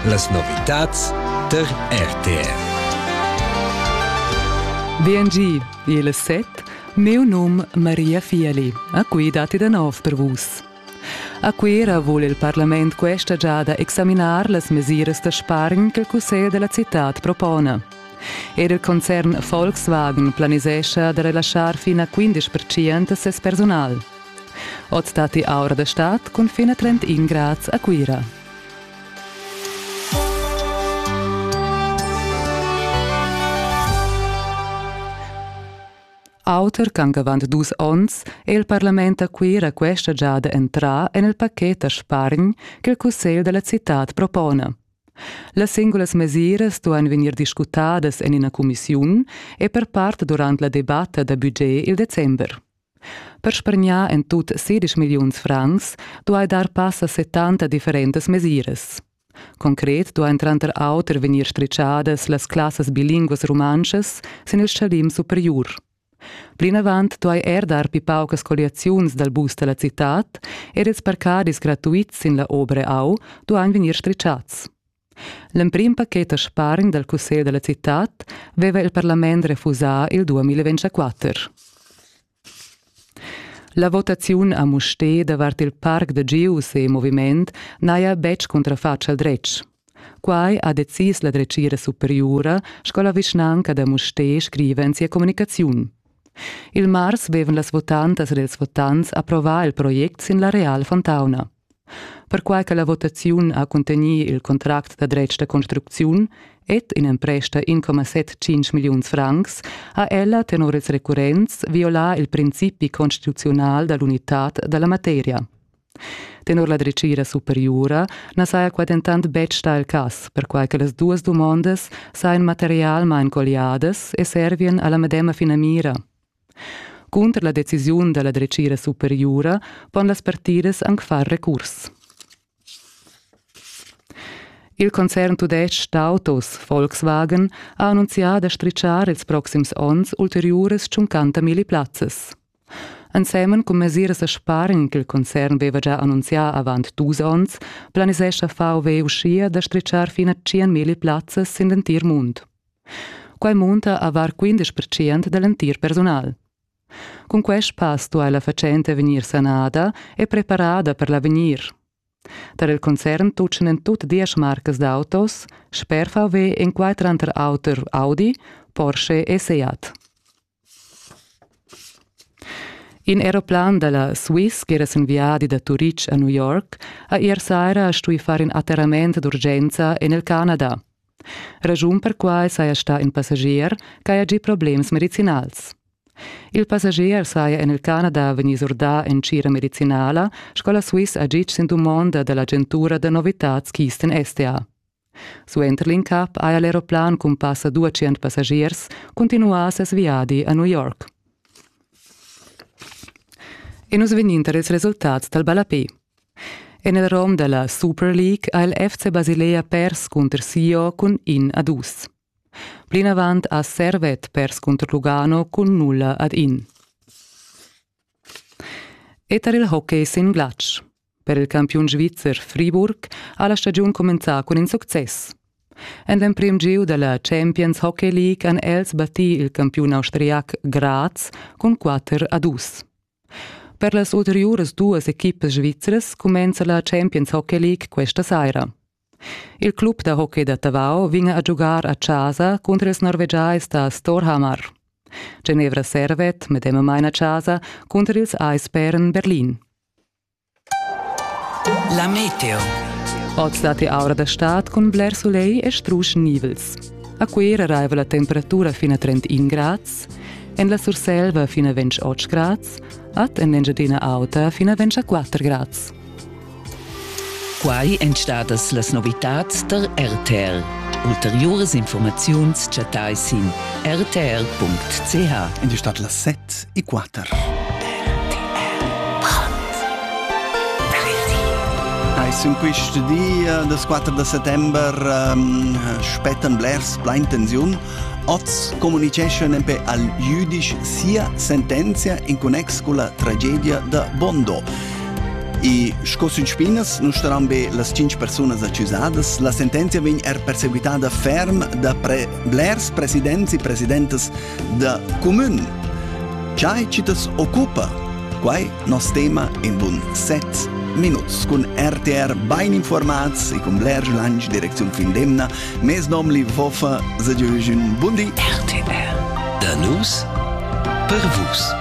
Las novitads tar RTR. VNG, il set, meu num Maria Fieli. A qui dati da nov per vus. A Cuira vole il Parlament questa giada examinar las mesiras da spargn che il Cussegl della città propone. Er il concern Volkswagen planisescha da relaschar fin a 15% ses personal. Oz datti aura da stad cun fin a 31 grads a Cuira. Auter ch'anc avant dus onns è il parlament a Cuira questa giada entrà en il pachet da spargn che il cussegl da la citad propona. Las singulas mesiras stuan vegnir discutadas en ina cumissiun e per part durant la debatta da budget il december. Per spargnar en tut sedisch milliuns francs duai dar pass a settanta differentas mesiras. Concret duain tranter auter vegnir stritgadas las classas bilinguas rumantschas sin il stgalim superiur. Plinavant duai er dar pli paucas colliaziuns dal bus da la citad ed ils parcadis gratuits sin la Obere Au duain vegnir stritgads. L'emprim paket da spargn dal cussegl da la citad veva il parlament refusà il 2024. La votaziun a Mustér davart il parc da Gius e moviment n'haja betg cuntrafatg al dretg. Quai ha decis la dretgira superiura sco la vischnanca da Mustér scriva en sia communicaziun. Il mars vevan las votantas ed ils votants approvà il project sin la Real Fontauna. Perquai che la votaziun ha cuntegnì il contract da dretg da construcziun ed in'empresta 1,75 milliuns francs, ha ella tenor ils recurrents violà il principi constituzional da l'unitad da la materia. Tenor la dretgira superiura na saja qua dentant betg stà il cas, perquai che las duas dumondas sajan materialmain colliadas e servien a la medema finamira. Cunter la decisiun dalla dretgira superiura pon las partidas anc far recurs. Il concern tudestg d'autos Volkswagen ha annunzià da stritschar ils proxims onns ulteriuras 50.000 plazzas. Ensemen cun mesiras da spargn ch'il concern veva già annunzià avant dus onns, planisescha VW uschia da stritschar fin a 100.000 plazzas sin l'entir mund. Quai munta a var 15 percent da l'entir persunal. Cun quest pass duai la fatschenta vegnir sanada e preparada per l'avegnir. Tar il concern tutgan en tut diesch marcas d'autos, sper VW en quai tranter auter Audi, Porsche e Seat. In aeroplan dalla Swiss ch'era sin viadi da Turitg a New York ha ier saira stuì far in atterrament d'urgenza en il Canada. Raschun per quai saja stà in passagier ch'haja gì problems medicinals. Il passagier saja en il Canada vegnì surdà en tgira medicinala sco la Swiss ha gitg sin dumonda da l'agentura da novitads Keystone STA. Suenter l'incap haja l'aeroplan cun passa duatschient passagiers cuntinuà ses viadi a New York. E nus vegnin tar ils resultats dal ballapé. En il rom da la Super League ha il FC Basilea pers cunter Sio cun in a dus. Plinavant ha Servet pers cunter Lugano cun nulla ad in. E tar il hockey sin glatsch. Per il campiun svizzer Friburg ha la stagiun cumenzà cun in success. En l'emprim giu da la Champions Hockey League han els battì il campiun austriac Graz cun 4 a 2. Per las ulteriuras duas equipas svizras cumenza la Champions Hockey League questa saira. Il club da hockey da Tavau vegn a giugar a casa cunter ils norvegiais da Storhamar. Genevra Servet medemamain a casa cunter ils Eisbären Berlin. La meteo. Oz datti aura da stad cun bler sulegl e strusch nivels. A Cuira raiva la temperatura fin a 31 grads, en la Surselva fin a 28 grads, ad en l'Engiadina Auta fin a 24 grads. Quai èn stadas las novitads tar RTR. Ulteriuras informaziuns chattai sin rtr.ch. En die Stadt las 7 e 4. Eis in quist di das 4 da settember ähm, spettan blers plein tensiun. Oz comuniceschan empe al jüdisch sia sentenzia in connex con la tragedia da Bondo. E sco sün spinas nun staran be las tschinch persunas accusadas, la sentenzia vegn er perseguitada ferm da pre blers presidents e presidentas da cumün. Chai chi t'as occupa? Quai nos tema in bun set minuts cun RTR bain informats e cun Blair Lange Direktion fin d'emna. Mes nom li Woffa, se un bundi. RTR. Da nus per vus.